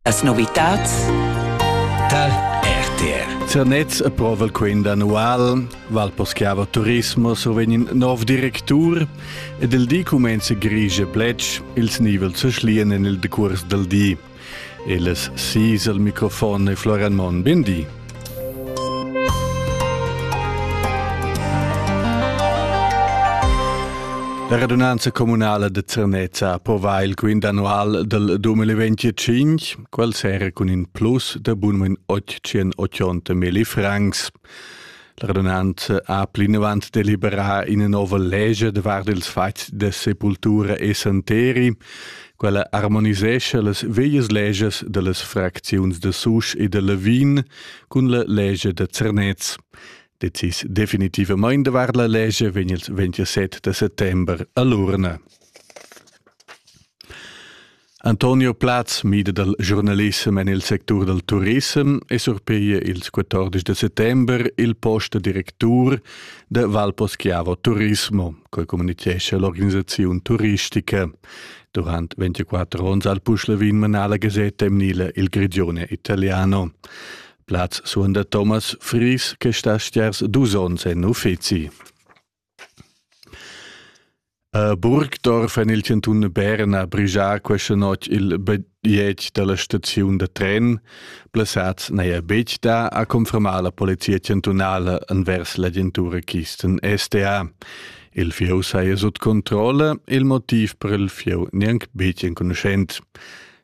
Las novitads tar RTR. Zernez e provel quint annual, Val Poschiava Turismo survegn in nov directur ed il di cumenza grigia plec ils nivel zu schlien en il decurs del di. Il es sis al microfon e Florian Mon, ben di. La radunanza communala de Zernez po va il quint annual del 2025, quel sera cun in plus de bunmen 880 milli francs. L'radunant ha plinavant deliberà ina nova legia davart ils fatgs da sepultura e santeri. Quella armonisescha las veias legias da las fracziuns da Susch e da Lavin cun la legia da Zernez. Decis definitivamain davart la legia vegn il 27 de settembre a l'urna. Antonio Platz mida dal giurnalissem en il sectur dal turissem e surpiglia ils 14 da settember il post da directur da Valposchiavo Turismo, coi communicescha l'organisaziun turistica. Durant 24 onns al Puschlavin manà la gasetta emnila Il Grigione Italiano. Platz suonda Thomas Fries, che sta stiers dus onns en uffizi. A Burgdorf en il chantun Berna ha brigia questa notg il bajetg da la staziun da tren. Blessads n'haja betg dà, ha confermà la polizia chantunala envers l'agentura Kisten STA. Il fieu saja sut controlla, il motiv per il fieu gnanc betg enconuschent.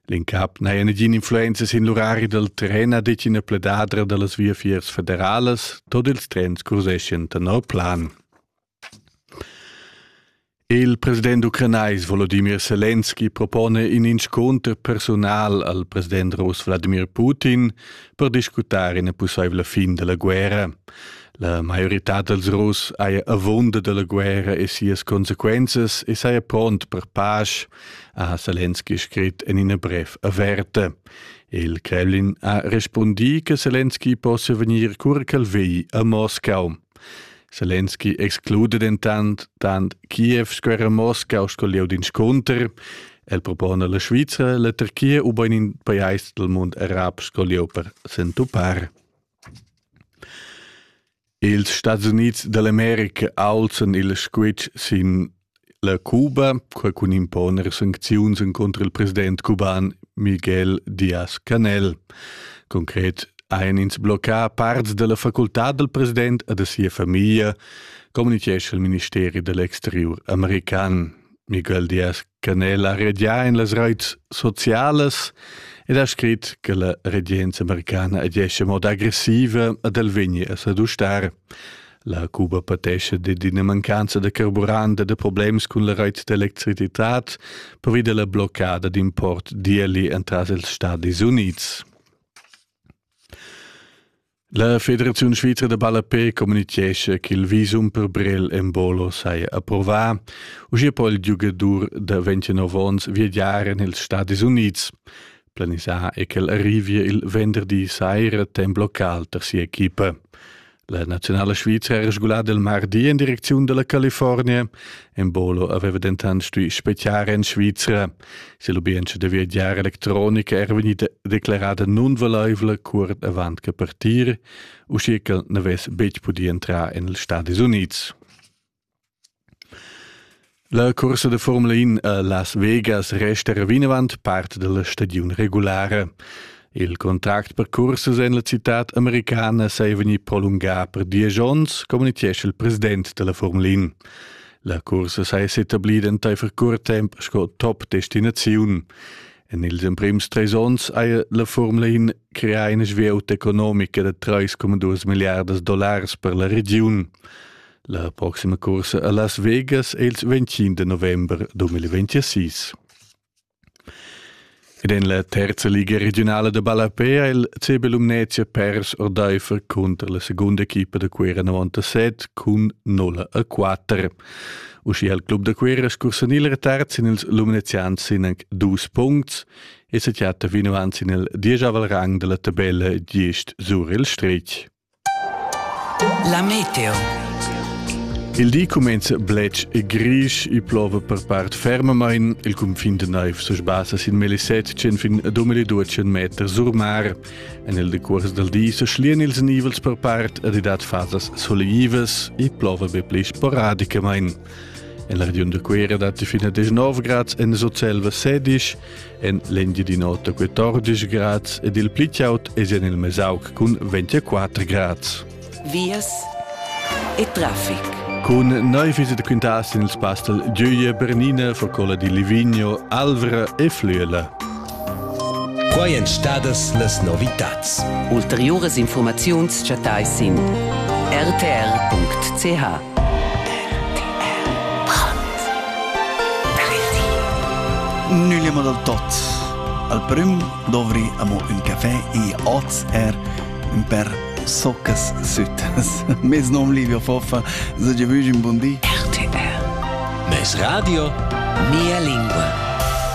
L'incap n'haja negin influenza sin l'urari dal tren, ha detg ina pledadra da las viafiers federalas. Tot ils trens curseschan tenor plan. Il president ucranais Volodimir Selenski propone in inscunter personal al president russ Vladimir Putin per discutar ina pussaivla fin della guerra. La maiorità dels Russ haja avunda della guerra e sias consequenzas e saja pront per pace, ha Selenski scrit en ina brev averta. Il Kremlin ha respundì che Selenski possia vegnir cura ch'el vegli a Moscau. Selenski exclude dentant, tant Kiev sco era Moscau sco lieu d'inscunter. El propone la Svizra, la Turchia u ben in pajais del mund arab sco lieu per s'entupar. Ils Stats Unids dall'America aulzan il squitsch sin la Cuba, quei cun imponer sancziuns contro il president cuban Miguel Díaz-Canel. Concret ein ins bloccà parts della facultad del president e de sia famiglia, communichescha il ministeri dell'exterior american. Miguel Díaz Canela regia in las reits socialas ed ha scrit che la regenza americana agesce moda aggressiva ad el vegnir a sadustar. La Cuba patesce de d'ina mancanza de carburant e de problems cun la reit d'electricitat per via la bloccada d'import dieli entras els Stati Units. La Federaziun svizra da ballapé communitgescha ch'il visum per Brel en Bolo saja approvà, uschia po il giugadur da 29 onns viagiar en ils Stadis Unids. Planisà è ch'el arrivia il venderdi saira temp local tar sia equipa. La naziunala svizra era sgulada il mardi en direcziun da la California. En Bolo aveva dentant stuì spetgar en Svizra. Se lubientscha da viagiar electronica era vegnida declarada nunvelaivla cuort avant che partir, uschia ch'el n'avess betg pudì entrar en ils Stadis Unids. La corsa da Formula 1 a Las Vegas resta vinavant parte della stagione regulare. Il contract per cursus en la citad americana sei vegni prolungà per diesch onns, communitgescha il president della Formula In. La cursa sei s'etablida enteifer curt temp sco top destinaziun. En ils emprims treis onns haja la Formula In creà ina svieuta economica da 3,2 milliardas dollars per la regiun. La proxima cursa a Las Vegas è il 25 november 2026. Ed en la terza liga regiunala da ballapè ha il CB Lumnezia pers ordaifer cunter la segunda equipa da Cuera 97 cun 0 a 4. Uschia ha il club da Cuera scursanì retard sin ils lumnezians sin anc dus puncts e sa chatta vino anzi nel diesavel rang dalla tabella gist sur il stretg. La meteo. Il di cumenza bletsch e grisch e plova per part fermamain. Il cunfin de naiv se sbassa sin meli 700 fin a 2200 meter sur mar. En il decuors del di se schlien ils nivels per part ad dat fasas soleivas e plova be pli sporadicamain. En la regiun de Cuera dat fino a 19 grads en Socelva 16 en l'Engiadin'Ota 14 grads ed il pli chaud es en il Mesauc cun 24 grads. Vias e traffic. Cun neu fisi da quintas in il spastel Giuie Bernina, Focola di Livigno, Alvra e Flüela. Quai èn stadas las novitads. Ulteriuras informaziuns chattais sin rtr.ch. Nüllemo dal tot. Al prüm dovri amo ün café e oz er ün per soccas süttas. Mes nom Livio Foffa, sage vügin bun di. RTR. Mes radio, mia lingua.